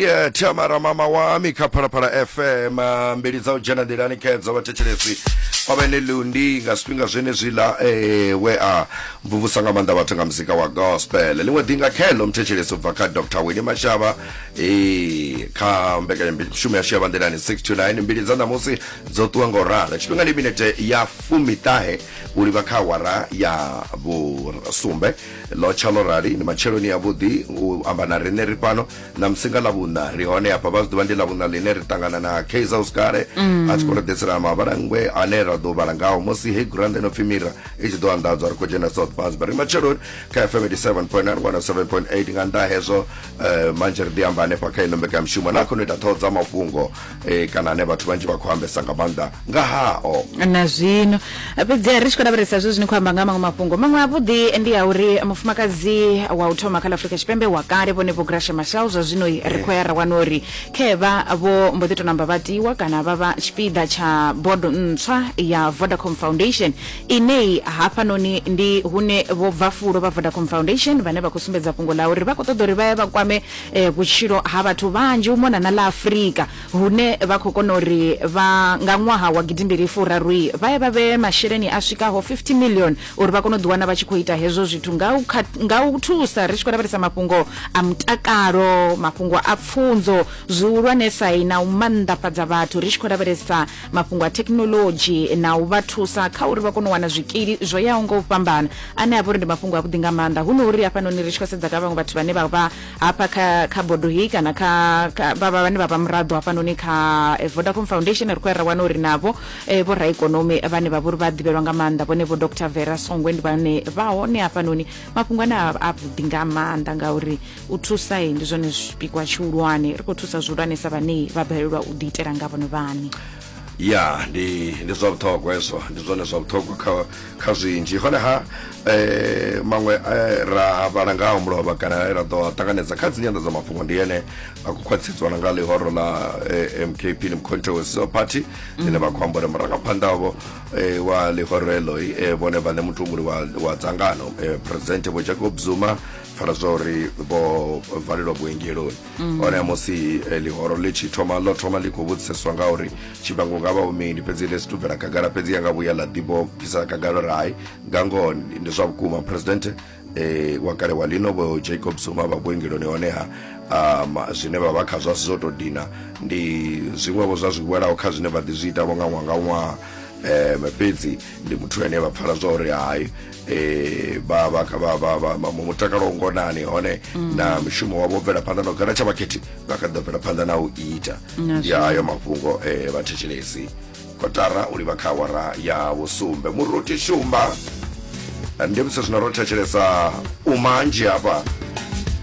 Yeah, Tamara mama wami kha Phalaphala FM ah, mbili dza u dzhena nḓilani khedzo vhathetshelesi kwa vhene lundi nga zwifhinga zwenezwiḽa eh, we a mvumvusa nga maanḓa vhathu nga muzika wa gospel ḽiṅwe ḓi nga kheḽo muthetshelesi u bva kha dr wini mashava eh, kha mbekanyamushumo yashu ya vhanḓilani 629 mbili dza ṋamusi dzo ṱuwa nga u ralo tshifhinga ndi minete ya fumiṱahe u livha kha awara ya vhusumbe ḽo tsha ḽo rali ndi matsheloni yavhuḓi u amba na riṋe ri fhano ṋamusi nga ḽavhuṋa ri hone hafha vha zwi ḓivha ndi ḽavhuṋa ḽine ri ṱangana na kaizer oscare a tshi khou ri ḓisela mavhalangwe ane ra ḓo vhala ngaho musi hei gurannda ino pfi mira i tshi ḓo anḓadzwa ri khou dzhena south basba ri matsheloni kha fm 87.9 107.8 nga nnḓa hezwo eh, manzhe ri ḓi amba hanefha kha ino mbekanyamushumo na khono ita ṱhoho dza mafhungo eh, kana ane vhathu vhanzhi vha khou ambesa nga maanḓa nga hao na zwino fhedziha ri tshi khou lavhelesa zwe zwini khou amba nga maṅwe mafhungo maṅwe avhuḓi ndi a uri mufumakadzi wa u thoma kha ḽa afurika tshipembe wa kale vhone vho grashe mashal zwa zwino ri khou ya ra wana uri khevha vho mbo ḓi to namba vha tiwa kana vha vha tshipiḓa tsha bodo ntswa ya vodacom foundation inei hafhanoni ndi hune vho bva fulo vha vodacom foundation vhane vha khou sumbedza fhungo ḽa uri vha khou ṱoḓa uri vha ye vha kwame vhutshilo ha vhathu vhanzhi u mona na ḽa Afrika hune vha khou kona uri vha nga ṅwaha wa gidimbili furaru vha ye vha vhee masheleni a swikaho 50 million uri vha kone u ḓiwana vha tshi khou ita hezwo zwithu nga u thusa ri tshi khou lavhelesa mafhungo a mutakalo mafhungo a pfunzo zwihulwanesa na u mannḓafhadza vhathu ri tshi khou lavhelesa mafhungo a thekhinolodzhi na u vha thusa kha uri vha kone u wana zwikili zwo yaho nga u fhambana ane a vha uri ndi mafhungo avhuḓi nga maanḓa hu no uri hafhanoni ri tshi khou sedza kha vhaṅwe vhathu vhane vha vha hafha kha kha bodo heyi kana kha vha vhane vha vha muraḓo hafhanoni kha eh, vodacom foundation ri khou ya ra wana uri navho eh, vho raikonomi vhane vha vha uri vha ḓivhelwa nga maanḓa vhone vho dr vera songwe ndi vhane vha hone hafhanoni mafhungo ane a vhuḓi nga maanḓa ngauri u thusa ndi zwone zwipikwa tshihulwane ri khou thusa zwihulwanesa vhane vha balelwa u ḓiitela nga vhone vhane ya ndi ndi zwa vhuṱhogwa hezwo ndi zwone zwa vhuṱhogwa kha kha zwinzhi honeha eh maṅwe eh, ra vhala nga ha mulovha kana ra ḓo ṱanganedza kha dzi nyanḓa dza mafhungo ndi ene a khou khwaṱhisedziwa na nga ḽihoro ḽa eh, mkp ni mcontroversial party ḽine vha khou amba uri murangaphanḓa wavho eh, wa ḽihoro eḽo eh, vhone vhaṋe mutumuli wa, wa dzangano eh, president vho jacob zuma fara zwa uri vho valelwa vhuengeloni mm. hone musi eh, ḽihoro ḽi tshi thoma ḽo thoma ḽi khou vhudziseswa nga uri tshivhango nga vha umini fhedzi ḽi si tubvela khagala fhedzi ya nga vhuya ḽa ḓivho bvisa khagala uri hai nga ngoho ndi zwa vhukuma presidente eh, wa kale wa lino vho jacob zuma vha vhuengeloni honeha um, zwine vha vha khazwo a si zwo tou dina ndi zwiṅwevho zwa zwi welaho kha zwine vha ḓi zwi itavho nga ṅwaha nga ṅwaha um fhedzi ndi muthu ane vha pfala zwa uri hai eh ba ba ba ba ba ba- mu mutakalo wa ngonani hone Mm. na mushumo wavho bvela phanḓa na u gana tsha vhakhethi vha kha ḓo bvela phanḓa na u ita Na ya ayo mafhungo eh vha thetshelesi kotara u livha kha awara ya vhusumbe muruti shumba ndi musi zwino ro thetshelesa u manzhi hafha